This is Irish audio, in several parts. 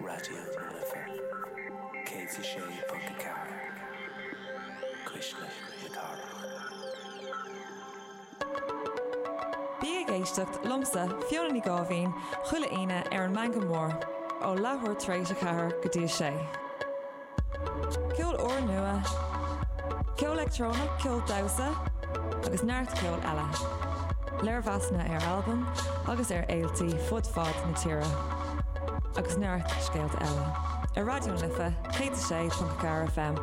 Raidió na Life 106.4 Cuisle na Cathrach. Bí ag éisteacht liomsa, Fiona Ní Ghoibhín, chuile Aoine ar an Meangadh Mór, ó leathuair tar éis a ceathair go dtí a sé. Ceol úrnua, ceol leictreonach, ceol damhsa agus neart ceoil eile. Léirmheasanna ar albaim agus ar fhéiltí fud fad na tíre agus neart scéalta eile ar Raidió na Life 106.4 FM.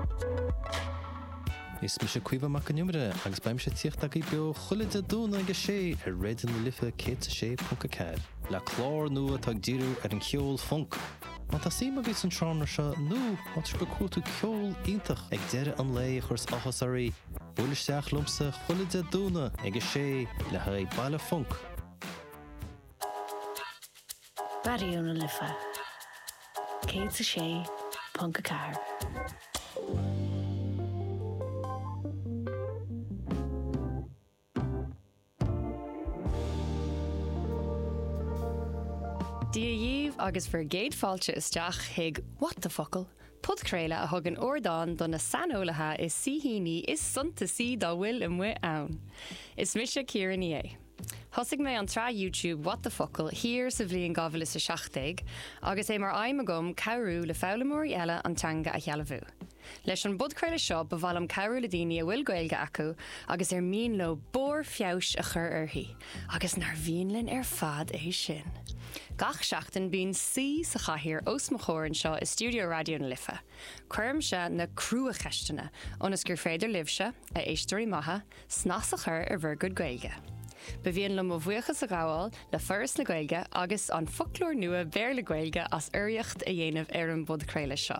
Is mise Caoimhe Mac an Iomaire agus beidh mise ag tíocht agaibh beo chuile Dé Domhnaigh ag a sé ar Raidió na Life 106.4. Le clár nua atá ag díriú ar an cheol func, Má tá suim agaibh sa seánra seo nó más maith libh cúpla tiúin ceol iontach ag deireadh an lae a chur áthas oraibh, buail isteach liomsa chuile Dé Domhnaigh ag a sé le haghaidh Baile Func. Raidió na Life 106.4. Dia dhíbh agus bhur gcéad fáilte isteach chuig What the Focal! podchraoladh a thugann ardán do na saineolaithe is saoithíní is suntasaí dá bhfuil amuigh ann. Is mise Ciara Ní É. Thosaigh mé an tsraith YouTube What the Focal! thiar sa bhliain 2017 agus é mar aidhm agam cabhrú le foghlaimeoirí eile an teanga a shealbhú. Leis an bpodchraoladh seo ba mhaith liom cabhrú le daoine a bhfuil Gaeilge acu agus ar mian leo barr feabhais a chur uirthi, agus nár mhian linn ar fad é sin! Gach seachtain bíonn saoi sa chathaoir os mo chomhair anseo i stiúideo Raidió na Life. Cuirimse na cruacheisteanna ionas gur féidir libhse, a éisteoirí maithe, snas a chur ar bhur gcuid Gaeilge. Ba mhian liom mo bhuíochas a ghabháil le Foras na Gaeilge agus an Foclóir Nua Béarla-Gaeilge as urraíocht a dhéanamh ar an bpodchraoladh seo.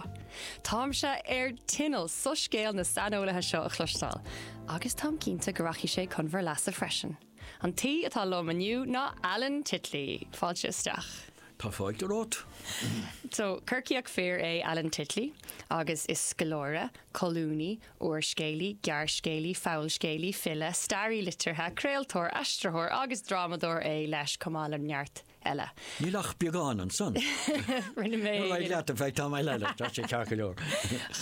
Táimse ar tinneall soiscéal na saineolaithe seo a chloisteáil, agus táim cinnte go rachaidh sé chun bhur leasa freisin. An t-aoi atá liom inniu ná Alan Titley. Fáilte isteach. Go raibh maith agat. So, Corcaíoch fir é Alan Titley, agus is scoláire, colúnaí, úrscéalaí, gearrscéalaí, fabhalscéalaí, file, staraí liteartha, craoltóir, aistritheoir agus drámadóir é leis, chomh maith le neart eile. Níl ach beagán ansan. Rinne mé. Ar aghaidh leat, in fact, tá mé le leat, tá sé ceart go leor.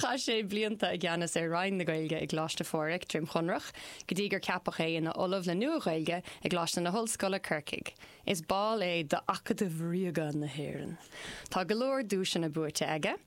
Chaith sé blianta i gceannas ar Roinn na Gaeilge i gColáiste Phádraig, Droim Chonrach, go dtí gur ceapadh é ina Ollamh le Nua-Ghaeilge i gColáiste na hOllscoile, Corcaigh. Is ball é d'Acadamh Ríoga na hÉireann. Tá go leor duaiseanna buaite aige.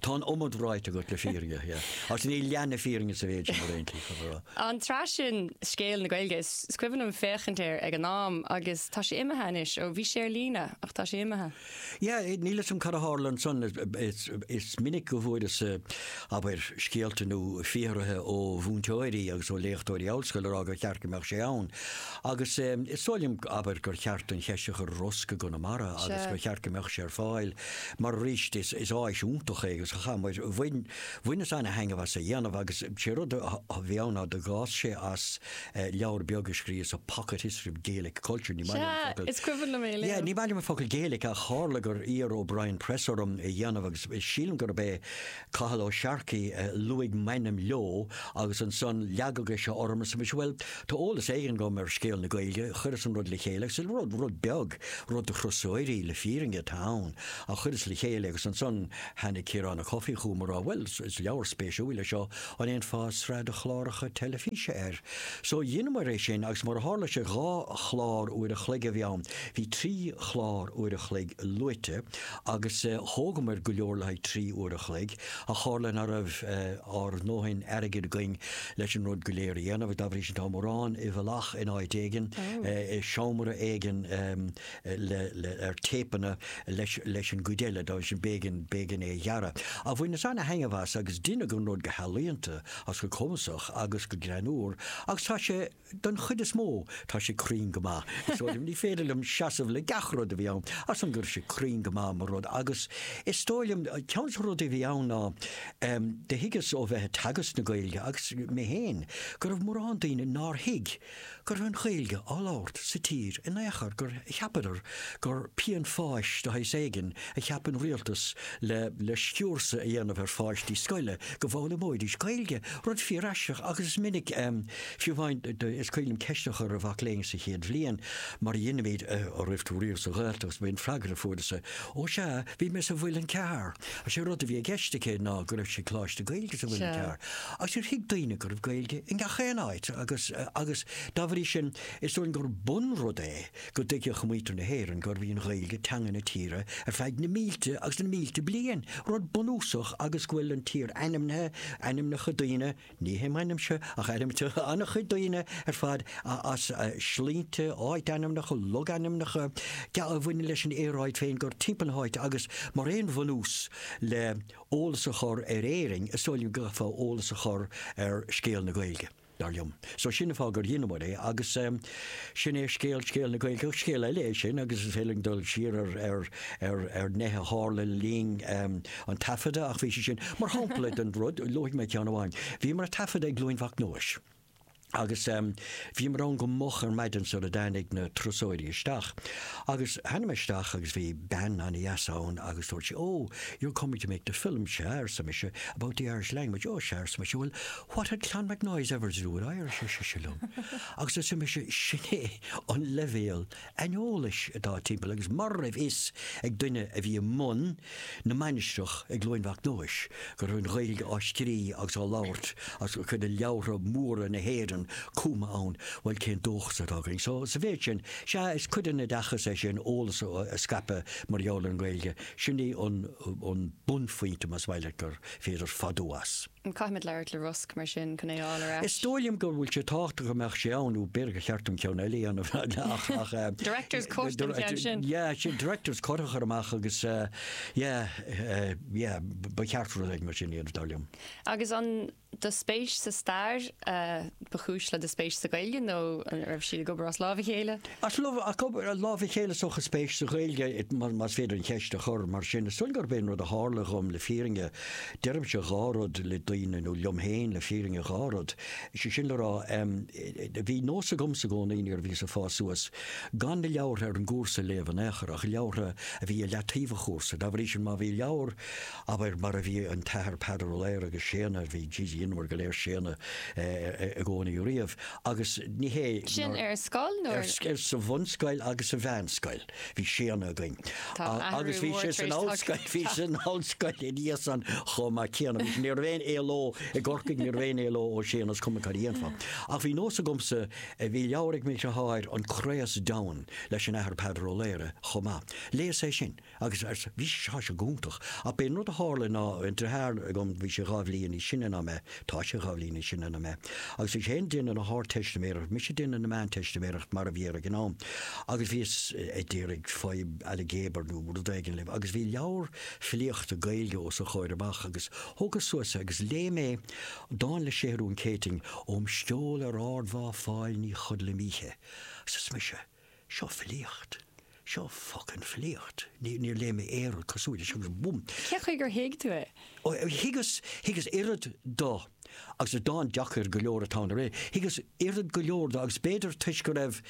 Tá an iomad ráite agam le fírinne, yeah. Ach níl leath na fírinne sa mhéid sin ar aon taobh, a rá. An tsraith sin, Scéal na Gaeilge, is cuimhin liom féachaint air ag an am agus tá sé imithe anois, ó bhí sé ar líne ach tá sé imithe. Yeah, níl 'fhios a'm cad a tharla ansan. Is minic go bhfuaireasa, abair, scéalta nó fiafraithe ó mhúinteoirí agus ó léachtóirí ollscoile a rá gur cheart go mbeadh sé ann. Agus is dóigh liom, abair, gur cheart an cheist a chur ar ROSG i gConamara agus gur cheart go mbeadh sé ar fáil Mar arís, is áis iontach é agus chaith muid, bhain, bhaineas an-thaitneamh as a dhéanamh agus sé rud a bhí ann ná gur eascair sé as leabhar beag a scríos a Pocket History of Gaelic Culture, ní maith liom an focal, ní, ní maith liom an focal Gaelic ach tharla gur iarr O'Brien Press orm é dhéanamh agus sílim gurb é Cathal Ó Searcaigh a luaigh m'ainm leo agus ansan leagadh seo ormsa mise, bhuel, tá eolas éigin agam ar scéal na Gaeilge, chuireas an rud le chéile agus is rud, rud beag, rud do thurasóirí, le fírinne, atá ann ach chuireas le chéile agus ansan tháinig Ciarán Ó Cofaigh chugam a rá, bhuel, is leabhar spéisiúil é seo, an bhféadfá sraith de chláracha teilifíse air? So dheineamar é sin agus mar a tharla sé dhá chlár uair a chloig a bhí ann, bhí trí chlár uair a chloig luaite, agus thógamar go leor le haghaidh trí uair a chloig, ach tharla ná raibh ár ndóthain airgid againn leis an rud go léir a dhéanamh, dá bhrí sin tá mórán i bhfolach in áit éigin, i seomra éigin ar téipeanna leis an gcuid eile, dá bhrí sin b'éigean é a ghearradh. Ach bhaineas an-thaitneamh as agus deineadh an rud go healaíonta agus go cumasach agus go greannúr agus tá sé. Don chuid is mó, tá sé cruinn go maith. Is dóigh liom, ní féidir liom seasamh le gach rud a bhí ann, ach sílim go raibh sé cruinn go maith mar rud. Agus is dóigh liom, ceann de na rudaí a bhí ann ná, do thuigeas ó bheith ag teagasc na Gaeilge, agus mé féin, go raibh mórán daoine nár thuig go raibh an Ghaeilge á labhairt sa tír in aon chor, gur cheapadar gur pian pháis de shaghas éigin a cheap an rialtas le sciúrsadh a dhéanamh ar pháistí scoile, go bhfoghlaimeoidís Gaeilge, rud fíoraisteach, agus is minic. Fiú amháin, is cuimhin liom ceist a chur ar mhac léinn sa chéad bhliain, mar a dheinimid, an raibh tú riamh sa Ghaeltacht, is é an freagra a fuaireas-sa, Ó sea, bhí mé sa Mhuileann Cearr! Agus sé rud a bhí i gceist aici ná go raibh sí ag Coláiste Gaeilge sa Mhuileann Cearr, agus níor thuig daoine go raibh Gaeilge i ngach aon áit, agus agus dá bhrí sin, is dóigh liom gur bunrud é go dtuigfeadh muintir na hÉireann gurbh í an Ghaeilge teanga na tíre ar feadh na mílte agus na mílte bliain, rud bunúsach, agus go bhfuil an tír ainmnithe, ainmneacha daoine, Ní hé m'ainmse, ach ainm an-chuid daoine ar fad as sloinnte, áitainmneacha, logainmneacha a bhaineann leis an aeráid féin gur timpeall na háite agus mar aon bhunús le eolas a chur ar Éirinn, is dóigh liom go gcaithfeá eolas a chur ar scéal na Gaeilge, dar liom. So sin an fáth gur dheineamar é agus sin é scéal scéal na Gaeilge. Scéal eile é sin agus is féidir linn dul siar ar nithe a tharla linn. an taifeadadh, ach bhí sé sin mar shampla den rud, luafaidh mé ceann amháin, bhíomar ag taifeadadh i gCluain Mhac Nóis. Agus ehm, bhíomar ann go moch ar maidin sara dtáinig na turasóirí isteach. Agus tháinig mé isteach agus bhí bean ana-dheas ann agus dúirt sí, oh, you're coming to make the film, sea, arsa mise, about the Irish language, oh, sea, arsa mise, well, what had Clonmacnoise ever to do with Irish, ar sise liom. Agus arsa mise, sin é an leibhéal aineolais atá timpeall agus mura raibh fhios ag duine a bhí i mbun na mainistreach i gCluain Mhac Nóis go raibh an Ghaeilge á scrí agus á labhairt agus cuid de leabhartha móra na hÉireann cumtha ann, bhuel, cén dóchas atá againn? So, sa mhéid sin, sea, is cuid den oideachas é sin, eolas a scaipeadh mar gheall ar an nGaeilge, sin é an bunphointe, más maith leat, gur féidir fadú as. Caithfimid labhairt le Rosg, mar sin, chun é a fháil ar ais. Is dóigh liom go bhfuil sé tábhachtach go mbeadh sé ann, nó b'fhéidir gur cheart dom ceann eile a dhéanamh. Director's cut den cheann sin. Yeah, sin director's cut a chur amach agus, yeah, yeah, ba cheart rud éigin mar sin a dhéanamh, dar liom. Agus an, do spéis sa stair? ba chúis le do spéis sa Ghaeilge nó an raibh siad ag obair as lámh a chéile? As lámh a chéile is dócha, a spéis sa Ghaeilge, más féidir an cheist a chur mar sin. Is dóigh gurb é an rud a tharla dhom le fírinne, deirimse dhá rud le daoine nó liom féin le fírinne dhá rud, sé sin le rá, bhí nós agamsa i gcónaí nuair a bhíos ag fás suas gan na leabhartha ar an gcúrsa a léamh in aon chor ach leabhartha a bhí i leataobh an chúrsa. Dá bhrí sin má bhí leabhar Abair, mar a bhí an tAthair Peadar Ó Laoghaire agus Séadna, a bhí G.G. Ionmhar go léir Séadna i gcónaí riamh, agus ní hé Sin nár, ar scoil nó ar. ar, sa bhunscoil agus sa mheánscoil bhí Séadna againn. Tá athrú mór tar éis teacht. Agus bhí sé san ollscoil, bhí sé san ollscoil ina dhiaidh san chomh maith céanna. Bhí sé, ní raibh aon éaló i gCorcaigh, ní raibh aon éaló ó Séadna, is cuma cad a dhéanfá. Ach bhí nós agamsa, eh, bhí leabhar ag m'dheartháir, An Craos-Deamhan leis an Athair Peadar Ó Laoghaire chomh maith. Léas é sin. agus bhí sé sin go hiontach, ach b'é an rud a tharlaigh ná an deartháir agam, bhí sé dhá bhliain níos sine ná mé, tá sé dhá bhliain níos sine ná mé, agus bhí sé fhéin ag déanamh na hArdteistiméireacht, mise ag déanamh na Meánteistiméireacht mar a bhí air ag an am, agus bhíos ag d'iarraidh fadhb ailgéabair nó rud éigin libh, agus bhí leabhar filíochta Gaeilge os a chomhair amach, agus thógas suas é agus léigh mé dán le Séathrún Céitinn, Óm sceol ar ardmhá Fáil ní chodlaim oíche, arsa mise. Seo filíocht. Seo focain filíocht. Níor léigh mé aon rud cosúil leis agus búm! Cé chaoi gur thuig tú é? Ó, thuigeas, thuigeas oiread do, agus is dán deacair go leor atá ann arae, thuigeas oiread go leor do agus b'fhéidir toisc go raibh,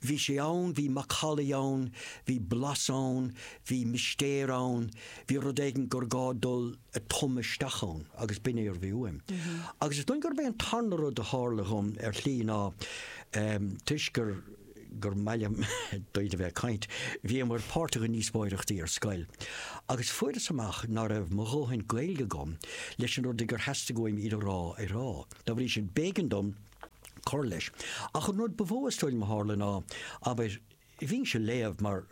bhí sé ann, bhí macallaí ann, bhí blas ann, bhí mistéir ann, bhí rud éigin gur gá dul, a thum isteach ann agus b'in é a bhí uaim. Agus is dóigh gurb é an tarna rud a tharla dhom ar shlí ná, toisc gur mhaith liom daoine a bheith ag caint, bhíomar páirteach i ndíospóireachtaí ar scoil. Agus fuaireas amach ná raibh mo dhóthain Gaeilge agam leis na rudaí gur theastaigh uaim iad a rá a rá. Dá bhrí sin, b'éigean dom cur leis. Ach an rud ba mhó is dóigh liom a tharla ná, abair, Bhínnse ag léamh mar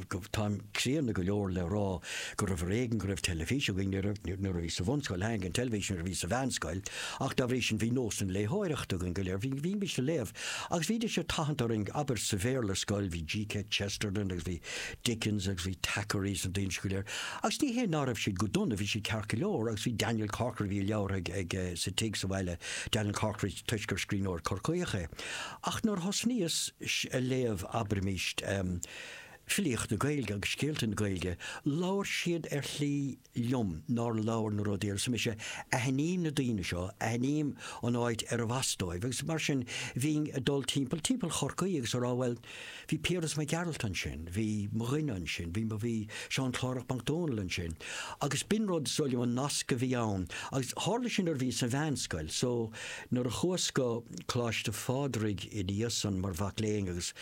go, táim críonna go leor le rá gurbh ar éigean go raibh teilifís againn nuair a bhíos sa bhunscoil, tháinig an teilifís nuair a bhíos sa mheánscoil, ach dá bhrí sin bhí nósanna léitheoireachta againn go léir, bhí, bhínnse ag léamh agus bhídís ag tathant orainn, abair sa Bhéarla ar scoil bhí G.K. Chesterton agus bhí Dickens agus bhí Thackeray agus na daoine sin go léir agus ní hé ná raibh siad go dona, bhí siad ceart go leor agus bhí Daniel Corkery, bhí a leabhartha ag, sa tigh sa bhaile, Daniel Corkery toisc gur scríbhneoir Corcaíoch é. Ach nuair a thosnaíos ag léamh, abraimís, filíocht na Gaeilge agus scéalta na Gaeilge, labhair siad ar shlí liom nár labhair na rudaí, arsa mise, aithním na daoine seo, aithním an áit arbh as dóibh, agus mar sin bhínn ag dul timpeall, timpeall Chorcaí agus ag rá, bhuel, Bhí Piaras Mac Gearailt ansin, bhí mo dhuine ansin, bhí, bhí Seán Clárach Mac Dónaill ansin. Agus b'in rud, is dóigh liom, an nasc a bhí ann. Agus tharla sé nuair a bhíos sa mheánscoil. So, nuair a chuas go Coláiste Phádraig ina dhiaidh san mar mhac léinn agus,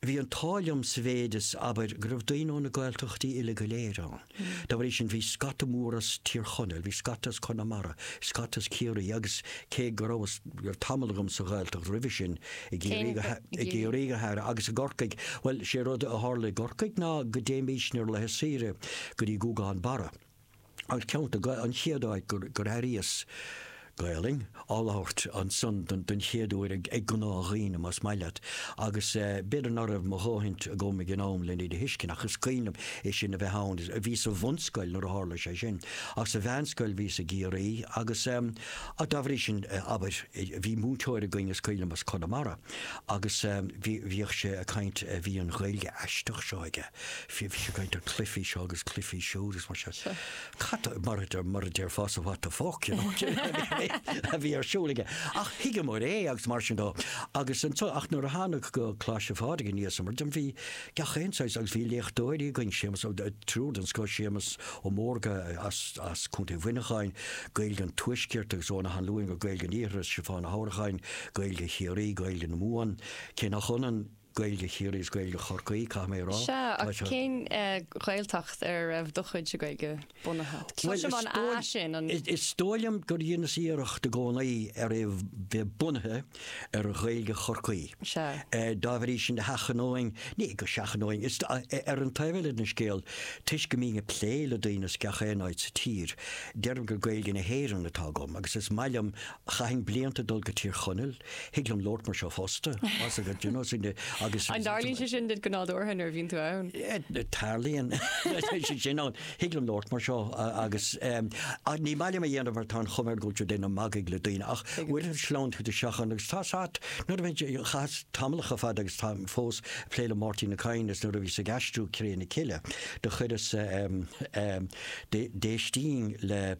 bhí an t-ádh liom sa mhéid is, abair, go raibh daoine ó na Gaeltachtaí uile go léir ann. Dá bhrí sin, bhí scata mór as Tír Chonaill, bhí scata as Conamara, scata as Ciarraí agus cé go rabhas, raibh tamall agam sa Ghaeltacht roimhe sin, i gCiarraí go, i gCiarraí go háirithe agus i gCorcaigh, bhuel, sé rud a tharla i gCorcaigh ná go dtéimísne ar laetha saoire go dtí Guagán Barra, an ceantar, an chéad áit gur airíos Gaeilge á labhairt ansan don chéad uair ag gnáthdhaoine, más maith leat, agus b'fhéidir ná raibh mo dhóthaint agam ag an am len iad a thuiscint, ach is cuimhin liom é sin a bheith ann. Bhíos sa bhunscoil nuair a tharla sé sin, ach sa mheánscoil bhíos i gCiarraí agus dá bhrí sin, abair, bhí múinteoir againn is cuimhin liom, as Conamara, agus bhíodh sé ag caint, bhí an Ghaeilge aisteach seo aige, bhí sé ag caint ar cluifí seo agus cluifí siúd agus mar sin. Cad, mar a déarfása, what the fuck, you know, cad a bhí ar siúl aige. Ach thuigeamar é agus mar sin dó. Agus anso, ach nuair a thánag go Coláiste Phádraig aníos, mar a deirim, bhí gach aon saghas agus bhí léachtóirí againn, Séamus Ó Dó-, triúr den scoth, Séamus Ó Mórdha as, as Contae Mhuineacháin, Gaeilge an Tuaiscirt, agus Eoghan Ó hAnluain go Gaeilge an Iarthair, Stiofán Ó hAnnracháin, Gaeilge Chiarraí, Gaeilge na Mumhan, cé nach ionann, Gaeilge Chiarraí is Gaeilge Chorcaí, caithfidh mé a rá. Sea, ach cén Ghaeltacht ar a raibh do chuid de Ghaeilge bunaithe? Cloisim an A sin, an. Is dóigh liom gur dheineas iarracht i gcónaí ar é bheith bunaithe ar Ghaeilge Chorcaí. Sea. Dá bhrí sin, sheachnóinn, ní go seachnóinn, is ar an taobh eile den scéal, toisc go mbím ag plé le daoine as gach aon áit sa tír, deirim gur Gaeilge na hÉireann atá agam agus is maith liom Chaithfinn blianta dul go Tír Chonaill, thig liom labhairt mar seo fosta, tá's agat agus. An dtarlaíonn sé sin duit go nádúrtha nuair a bhíonn tú ann? Tarlaíonn. Sé sin ann, thig liom labhairt mar seo agus ach ní maith liom a dhéanamh mar tá an chuma air go bhfuil tú ag déanamh magaidh le daoine ach bhuel sleamhnaíonn tú isteach ann agus tá's a't, nuair a bhí, chaitheas tamallacha fada agus táim fós ag plé le Máirtín Ó Cadhain is nuair a bhíos ag aistriú Cré na Cille do chuireas d'éistínn le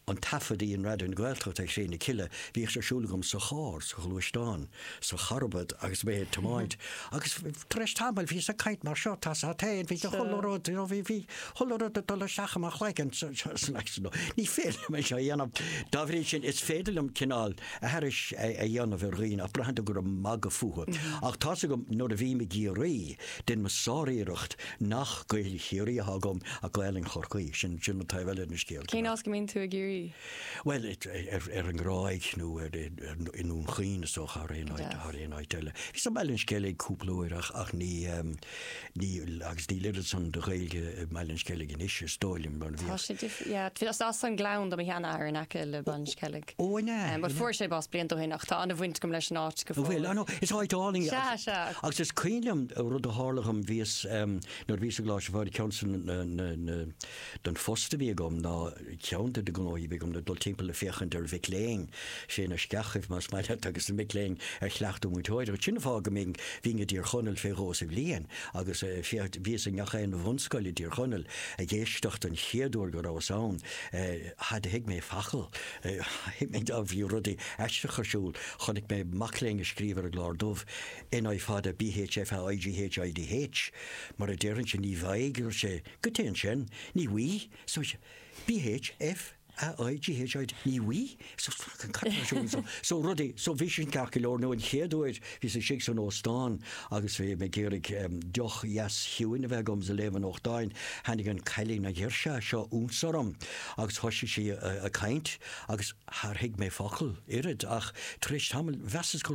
an taifead a dhein Raidió na Gaeltachta ar Chré na Cille, bhíodh sé ar siúl agam sa charr, sa ghluaisteán, sa charbad agus mé ag tiomáint agus tar éis tamaill bhíos ag caint mar seo, tá's a't héin, bhí chuile rud, you know, bhí, bhí chuile rud ag dul isteach i mo chloigeann sa, sa, san aicsean, no, ní féidir liom é seo a dhéanamh. Dá bhrí sin, is féidir liom cineál aithris a, a dhéanamh ar dhaoine ach braitheann tú gur ag magadh fúthu. Ach tá's agam nuair a bhím i gCiarraí, Deinim sáriarracht nach Gaelainn Chiarraí atá agam ach Gaelainn Chorcaí, sin an taobh eile den scéal. Cén áit go mbíonn tú i gCiarraí? Bhuel, ar an nGráig nó i nDún Chaoin is dócha thar aon áit eile. Bhíos i mBaile an Sceilg cúpla uair ach agus níl oiread san de Ghaeilge i mBaile an Sceilg anois is dóigh liom. Tá sé difriúil. Is as an nGleann do mo sheanathair in aice le Baile an Sceilg. But fuair sé bás blianta ó shin ach tá an-bhaint agam leis an áit go fóill. Bhuel, I know, is áit álainn í. Sea, sea. Agus is cuimhin liom rud a tharla dhom, bhíos em, nuair a bhíos i gColáiste Mhuire, ceann de na, na, na, den phost a bhí agam ná, ceann de na gnóthaí a bhí agam ná dul timpeall le féachaint ar mhic léinn, sna sceachaibh más maith leat agus na mic léinn ar chleachtadh múinteoireacht. Sin an fáth go mbínn, bhínn i dTír Chonaill fé dhó sa bhliain agus eh, bhíos i ngach aon bhunscoil i dTír Chonaill ag éisteacht an chéad uair go rabhas ann, eh, Char thuig mé facal? Thuig mé go bhí rudaí aisteach ar siúl. Chonaic mé mac léinn ag scríobh ar an gclár dubh, NÍ fada BH FA IGH IDH, mar a déarfainnse, ní bhfaighidh, dúirt sé, goidé sin, ní bhfuighidh, so BH FA IGH IDH, ní bhfuighidh, so cad atá ar siúl anso? So rudaí, so bhí sin ceart go leor, nó an chéad uair Bhíos istigh san óstán agus bhí mé ag iarraidh deoch dheas chiúin a bheith agam is ag léamh an nuachtáin. Tháinig an cailín, an ghirseach seo, ionsorm agus thoisigh sí ag caint agus char thuig mé focal, oiread, ach tar éis tamaill mheasas gur.